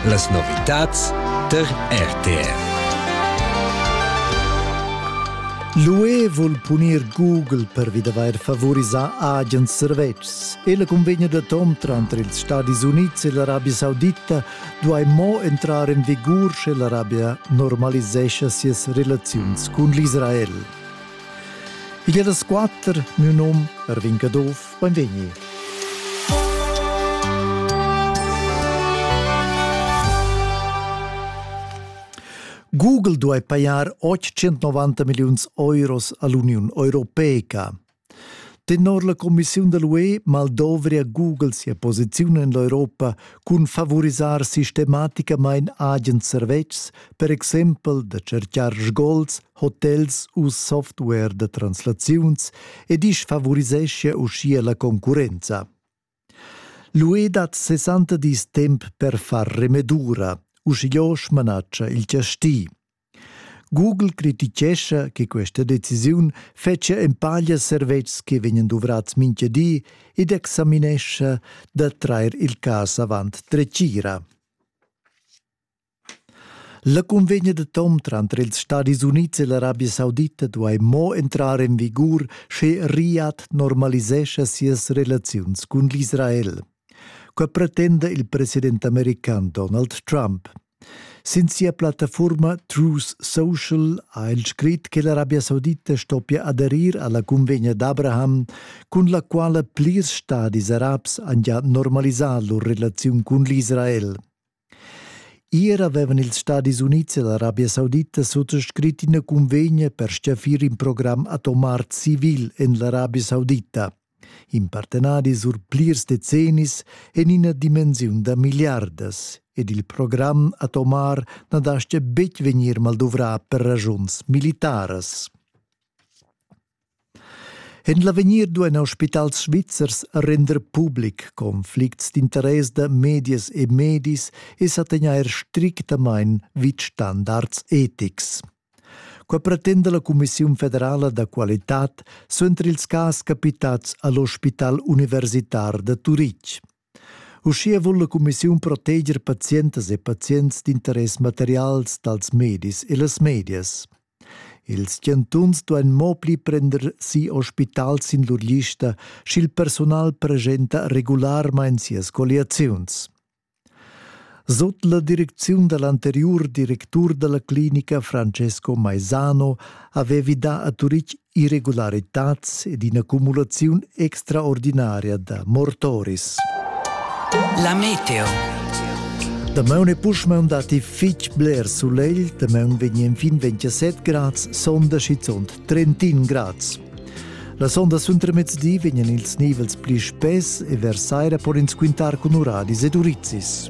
Las novitads tar RTR. L'UE vul punir Google per vi d'avair favorisà agens servetschs. Ella cunvegna d'atom tranter ils Stadis Unids e l'Arabia Saudita duai mo entrar en vigur sche l'Arabia normalisescha sias relaziuns cun l'Israel. Igl è las quatter, miu num, Erwin Caduff, Benvegni. Google duai pajar 890 milliuns euros a l'Uniun Europeica. Tenor la commissiun da l'UE maldovria Google sia posiziun en l'Europa cun favorisar sistematicamain agens servetschs, per exempel da cercar sgols hotels u software da translaziuns ed isch favoriseschia uschia la concurrenza. L'UE dat 60 dis temp per far remedura, uschigliò smanatscha il chastì. Google critichescha che questa decisiun fetschia empaglia servetschs che vegnan duvrats mintga di ed examinescha da trair il cas avant dretgira. La cunvegna da tom tranter ils Stadis Unids e l'Arabia Saudita duai mo entrar en vigur, sche Riad normalisescha sias relaziuns cun l'Israel. Quai pretenda il president american Donald Trump. Sin sia plattafurma Truth Social ha el scrit che l'Arabia Saudita stoppia aderir alla cunvegna d'Abraham, cun la quala plirs stadis arabs han già normalisà lur relaziun cun l'Israel. Ier avevan ils Stadis Unids e l'Arabia Saudita suttoscrit ina cunvegna per stgaffir in program atomar civil en l'Arabia Saudita. In partenadi sur plirs decennis en ina dimensiun da miliardas ed il program atomar na dastga betg vegnir maldouvrà per ragiuns militaras. En l'avegnir duein hospitals svizzers render public conflicts d'interess da medias e medis e sa tegnair strictamain vid standards etics. Qua pretenda la Cumissiun federala da qualitad suenter ils cas capitats all'ospital universitar da Turitg. Uschia vul la cumissiun proteger pazientas e pazients d'interess materials dals medis e las medias. Ils chantuns duain mo pli prender si ospital sin lur lista, sch'il personal presenta regularmain sias colliaziuns. Sot la direcziun da l'anteriur directur da la clinica Francesco Maisano aveva dà a Turitg irregularitads ed ina cumulaziun extraordinaria da mortoris. La meteo. Damaun e Puschmaun datti fitg bler sulegl, damaun vegnan fin 27 grads, sonda schizunt 31 grads. La sonda suentermezdi vegnan ils nivels pli spess e vers saira pon ins quintar cun uradis ed urizis.